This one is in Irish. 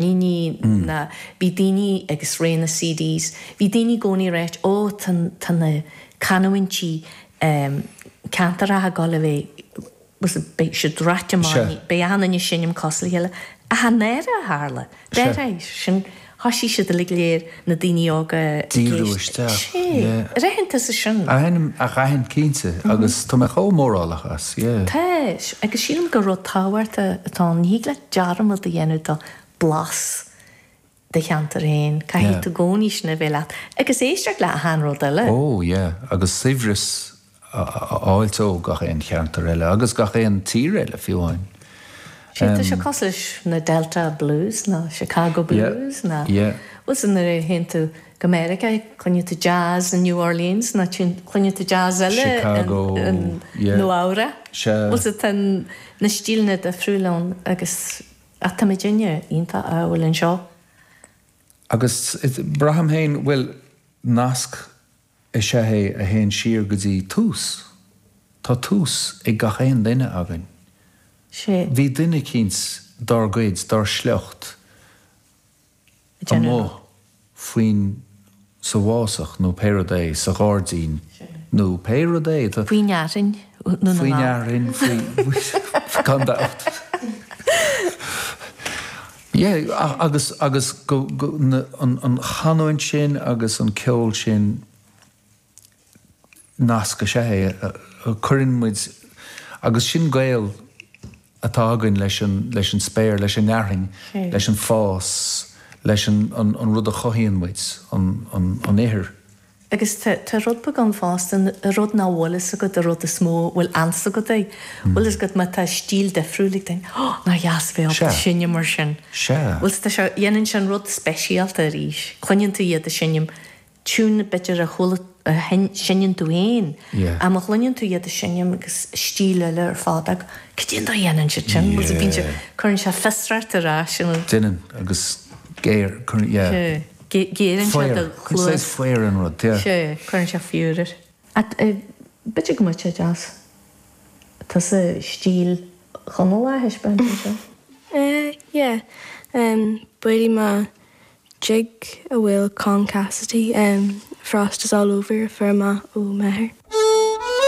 Ní, ní, na, bhí daoine agus ré na CDs, bhí daoine i gcónaí ag ráit, ó, tá, tá na canúintí ehm, ceantaracha ag gabháil a bheith, was it, beidh siad ráite amach, Sea. ní, beidh achan duine ag seinm cosúil le chéile, a chontráil a tharla, Sea. b'fhearr é sin, thoisigh siad uilig go léir, na daoine óga ag díriú isteach. Ar aithin tusa sin? Aithnim ach aithním cinnte agus tá mé chomh mórálach as, yeah. Tá, agus sílim gur rud tábhachtach atá ann, ní thig leat dearmad a dhéanamh de bhlas do cheantar féin, caithfidh tú i gcónaí sin a bheith leat agus éisteacht le achan rud eile. Oh yeah, agus saibhreas A fháil ó gach aon cheantar eile agus gach aon tír eile fiú amháin. Sea, tá sé cosúil leis na Delta Blues nó Chicago Blues nó, bhuel so nuair a théann tú go Meiriceá cluineann tú jazz na New Orleans nó cluineann tú jazz eile in Nua Eabhrac. Bhuel so tá na stíleanna difriúil ann agus ach tá muid ag déanamh iontach maith anseo. Agus braithim féin go bhfuil nasc Is ea é a théann siar go dtí tús. Tá tús ag gach aon duine againn. Sea. Bhí duine eicínt dár gcuid, dár sliocht, amuigh faoin, sa bhfásach nó pé rud é, sa ghairdín nó pé rud é. Faoin fhearthainn nó na nGall. Faoin fhearthainn, faoi, gan dabht. Yeah agus agus go go na an an chanúint sin agus an ceol sin nasc is ea é a a cuireann muid agus sin gaol atá againn leis an leis an spéir leis an fhearthainn leis an fás leis an an an rud a chothaíonn muid an an an ithir. Agus tá rud beag ann fosta, rud nach bhfuil fhios agat an rud is mó a bhfuil fhios agat é. Bhfuil fhios agat má tá stíl difriúil ag duine, ó, nár dheas bheith ábalta seinm mar sin. Bhfuil fhios agat, déanann sin rud speisialta arís. Cluineann tú iad ag seinm tiún b'fhéidir a chuala, a sheinneann tú féin, ach má chluineann tú iad ag seinm agus stíl eile ar fad acu, goidé an dóigh a dhéanann siad sin, bhfuil fhios agat, cuireann sé fiosracht ar ais. Déanann, agus géar, cuireann, yeah. Géaraíonn sé do chluas. Sea, cuireann sé faobhar air. B'fhéidir go mbeadh sé deas dúinn stíl Thír Chonaill a thaispeáint anseo? Yeah. Buailfidh mé jig a bhuail Con Cassidy, Frost is all over, a fuair mé ó m'athair.